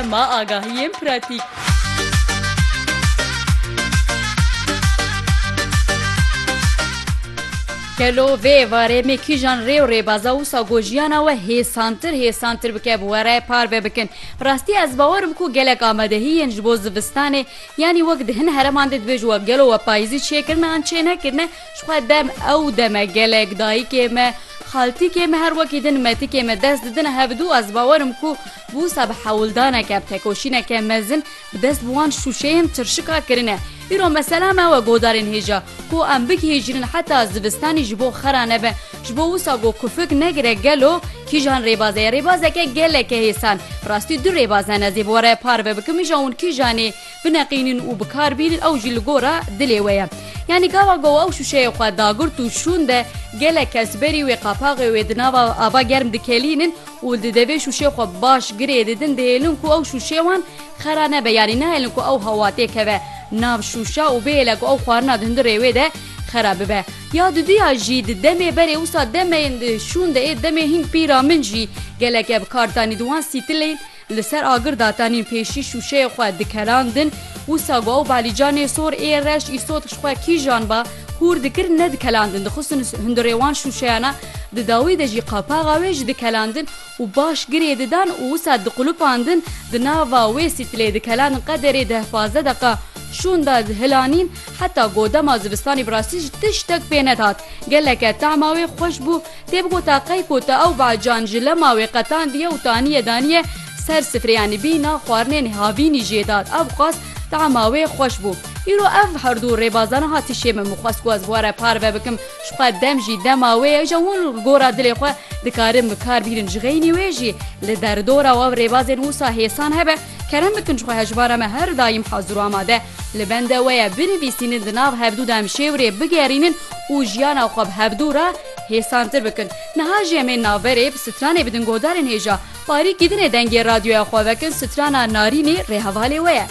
Ma agahiyên pratîk. Gelo vê êvarê me kîjan rê û rêbaza wisa ku jiyana we hêsantir hêsantir bike bi were parve bikin. Bi rastî ez bawer im ku gelek amadehiyên ji bo zivistanê yanî wek di hin hereman de dibêjin we gelo we payîzî çêkirine yan çênekirine, Ji xwe dem ew dem e gelek dayikê me, xaltikê me her wekî din metikê me dest didin hevdu ez bawer im ku bi wisa bi hewldaneke bi tekoşîneke mezin bi dest bi wan şûşeyên çirşika kirine. Îro mesela me we godarên hêja ku em bigihêjînin heta zivistanî ji bo xera nebe ji bo wisa ku kufik negire gelo kîjan rêbaze ye rêbazeke geleke hêsan rastî du rêbaze ne zê bi we re parve bikim îja hûn kîjanê bineqînin û bikar bînin ew jî li gora dilê we ye. Yanî gava ku ew şûşeyê xwe dagirt û şûn de gelek kes berî wê qapaxê wê di nava ava germ dikelînin û di devê şûşê xwe baş girê didin dihêlin ku ew şûşê wan xera nebe yanî nahêlin ku ew hewatê keve nav şûşa û bihêle ku ew xwarina di hundir rêwê de xera bibe. Ya duduya jî di demê berê wisa demeyên di şûn de ê demê hîn pîra min jî gelek ev kartanî di wan sîtilên Li ser agir de tenê pêşî şûşeyê xwe dikelandin, wisa ku ew balîcanê sor ê reş îsot ji xwe kîjan ba hûr dikir nedikelandin, dixistin hundirê wan şûşeyana, di dawî de jî qapaxa wê ji dikelandin û baş girê didan û wisa diqulupandin, di nava wê sîtilê dikelandin qederê deh pazdeh deqa şûn da di hilanîn, heta ku dema zivistanê bi rastî ji tiştek pê nedat, geleke tahma wê xweş bû. Tê bigota qey ku ta ew bacan ji lema wê qetandiye û taniye daniye ser sifrê yanî bîna xwarinên havînî jê dat ew xwest tama wê xweş bû. Îro ev herdû rêbazan hati şê min min xwest ku ez bi we re parve bikim ji xwe dem jî dema wê ye îja hûn li gora dilê xwe dikarin bikar bînin ji xeynî wê jî li derdora û ev rêbazên wisa hêsan hebe kerem bikin ji xwe hejmara me her daîm hazir û amade li bende we ye binivîsînin di nav hevdû demşêwirê bigerînin û jiyana xwe bi hevdû re Hêsantir bikin. Niha jî em ê naverê bi stranê bidin godarên hêja. Parî kîdinê dengê radyoya xwe vekin strana Narînî rê hevalê we ye.